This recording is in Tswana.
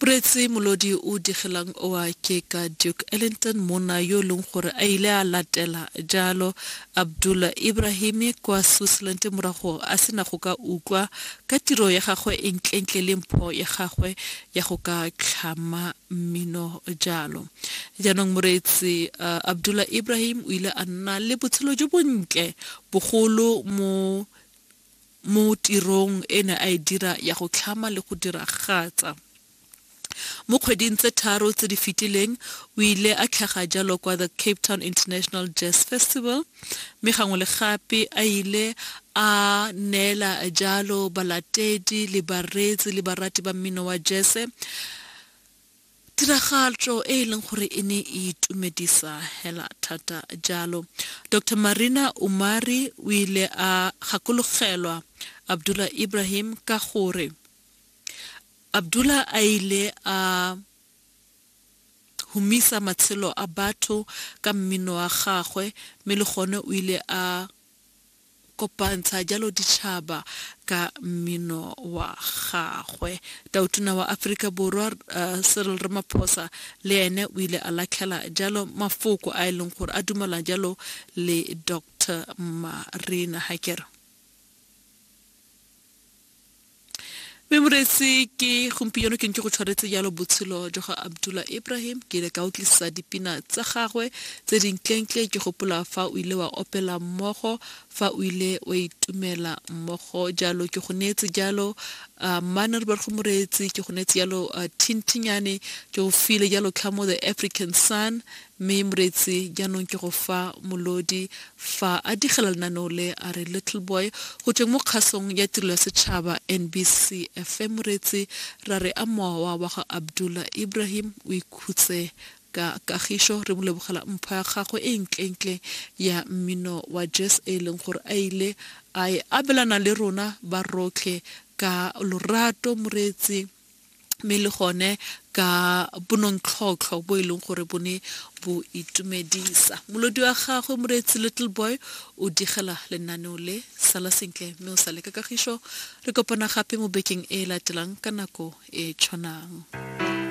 Puretsi molodi o digelang oa ke ka Duke Ellington, monna yo e leng gore a ile a latela jalo Abdul Ibrahimi kwa Switzerland morago a se na go ka utlwa ka tiro ya gagwe e ntlentle le mpho ya gagwe ya go ka tlhama mmino jalo. Jaanong moreetsi Abdul Ibrahim o ile a nna le botshelo jo bontle bogolo mo mo tirong e ne a e dira ya go tlhama le go diragatsa. Mo kgweding tse tharo tse di fetileng, o ile a tlhaga jalo kwa the Cape Town International Jazz Festival mme gangwe le gape a ile a neela jalo balatedi le bareetsi le barati ba mmino wa jese Tiragatšo e e leng gore e ne e itumedisa hela thata jalo. Doctor Marina Umari o ile a gakologelwa Abdullah Ibrahim ka gore Abdullah a ile a humisa matshelo a batho ka mmino wa gagwe mme le gone o ile a kopantsha jalo ditšhaba ka mmino wa gagwe. Tautona wa Aforika Borwa Cyril Ramaphosa le ene o ile a latlhela jalo mafoko a e leng gore a dumelana jalo le Dr Marina Hakere. mme moreetsi ke gompieno ke ntse go tshwaretse jalo botshelo jwa ga abdullah ibrahim ke ile ka utlwisisa dipina tsa gagwe tse dinklentle ke gopola fa o ile wa opela mmogo fa o ile wa itumela mmogo jalo ke go neetse jalo uh, manner ba go moreetsi ke go neetse jalo uh, thintinyane ke go file jalo tlhamo the african sun Mme Moretsi, jaanong ke go fa Molodi fa a digela lenaneo le a re Little Boy go tsweng mo kgasong ya tirelo ya setšhaba NBC FM. Moretsi, ra re a mowa wa ga Abdullah Ibrahim o ikhutse ka kagišo. Re mo lebogela mpho ya gagwe e ntlentle ya mmino wa jazz e e leng gore a ile a e abelana le rona ba rotlhe ka lorato. Moretsi. mme le gone ka bonontlhotlho bo e leng gore bo ne bo itumedisa molodi wa gagwe moreetsi little boy o digela lenaneo le sala sentle mme o sale ka kagišo re kopana gape mo bekeng e e latelang ka nako e tshwanang